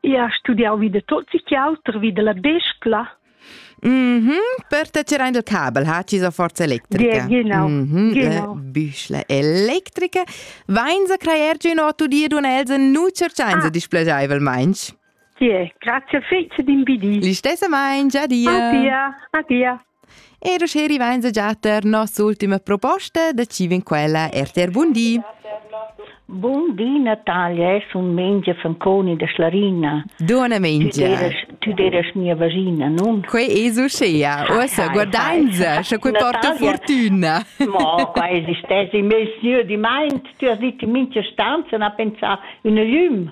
Io ho studiau vi da tot sic auter, vi dalla bescla. Mhm, mm per te tier ein il cabel, ha ti so forza electrica. Ge, genau. Mm -hmm, genau. Büschle electrica. Vein sa creier giu no tu dir dun Elsa nu cerciainsa ah. displaceivel meins? Tie, grazie fece din bidi. Li stessa meins, adia. Adia, adia. E rosce rivainza già per nossa ultima proposta da Civin quella RTR Bundi. Buondì Natalia, es un mengia fanconi da Schlarina. Dona mengia. Tu deras mia vagina, non? Que es uscea. Uossa guardainza, sche que porta fortuna. Mo, qua esistesi, mes sieu di mind, tu has dit in mincha stanza, na pensà un lüm.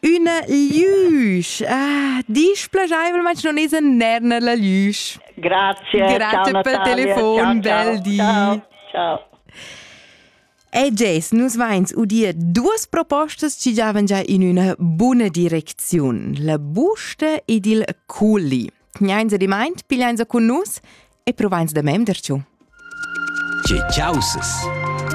Üna lüsch. Ah, disch plagiaivlmaing non es in nerna la lüsch. Grazie. Grazie ciao, pel telefon ciao, di. Ciao. ciao. E Jess, nus vains udir duas propostas chi giavan già in üna buna direcziun, la busta ed il culi. Tgnains ad imaint, pigliains a cun nus e provains da memder giù. Che ciausas!